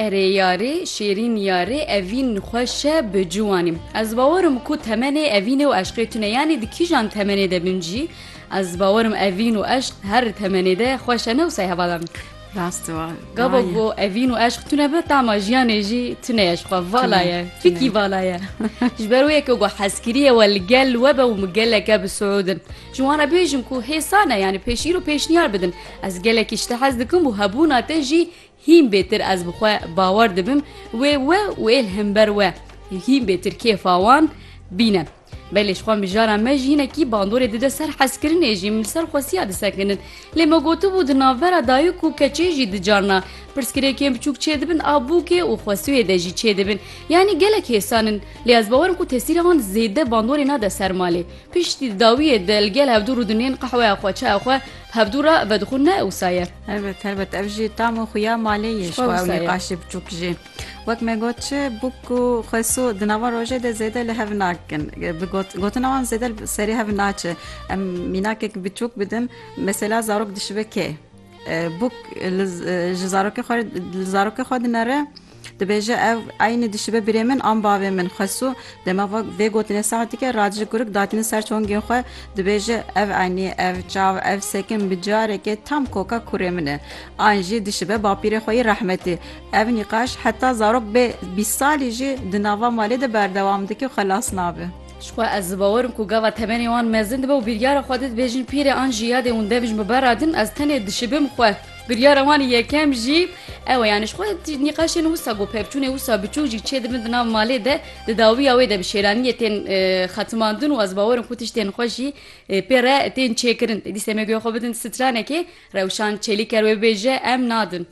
Erê yarê, şêrîn yarê, evîn xweş e bi ciwanî. Ez bawerim ku temenê evînê û eşqê tune yanî di kîjan temenê de bin jî ez bawerim evîn û eşq her temenê de xweş e ne wisa hevalan. Rast e wan. Gava ku evîn û eşq tune be tama jiyanê jî tune ye xwe vala ye fikî vala ye. Ji ber wê ku heskiriye we li gel we be û geleke bi siûdin. Ji wan re bêjim ku hê sar ne yanî pêş îro pêşniyar bidin. Ez gelekî ji te hez dikim û hebûna te jî hîn bêtir ez bi xwe bawer dibim wê we û êl himber we hîn bêtir kêfa wan bîne. Belê ji xwe mijara me jî hinekî bandorê dide ser hezkirinê jî min ser xwesiya disekinin. Lê me gotibû di navbera dayik û keçê jî di carna pirsgirêkên biçûk çêdibin a bûkê û xwesuyê de jî çêdibin. Yanî gelek hêsan in lê ez bawerim ku tesîra wan zêde bandorê nade ser malê. Piştî dawiyê di li gel hevdû rûdinên qehweya xwe, çaya xwe hevdû re vedixwin ne ewsa ye. Helbet, helbet ev jî tam û xuya malê ye ji bo ew nîqaşê biçûk jî. Wek me got çi, bûk û xwesû di nava rojê de zêde li hev nakin. Bi got, gotina wan zêde li serê hev naçe. Em mînakek biçûk bidin, mesela zarok dişibe kê? Bûk li ji zarokê xwe li zarokê xwe dinere. Dibêje ev eynî dişibe birê min an bavê min. Xwesu dema vê gotinê sax dike racî kuruk datîne ser çongên xwe dibêje ev eynî, ev çav, ev sekin bi carekê tam koka kurê min e. An jî dişibe bapîrê xwe yê rehmetî. Ev nîqaş heta zarok bê bîst salî jî di nava malê de berdewam dike û xelas nabe. Jixwe ez dibawerim ku gava temenê wan mezin dibe û bîryara xwe didibêjin pîrê an jî yadê ûndevî ji min biradin ez tenê dişibim xwe. Biryara wan yekem jî ew e yani ji xwe nîqaşên wisa ku pevçûnê wisa biçûk jî çê dibin di nav malê de di dawiya wê de bi şêraniyê tên xetmandin û ez bawerim ku tiştên xwe jî pê re tên çêkirin dîsê me guya xwe bidin stranekê rewşan çêlîker wê bêje em nadin.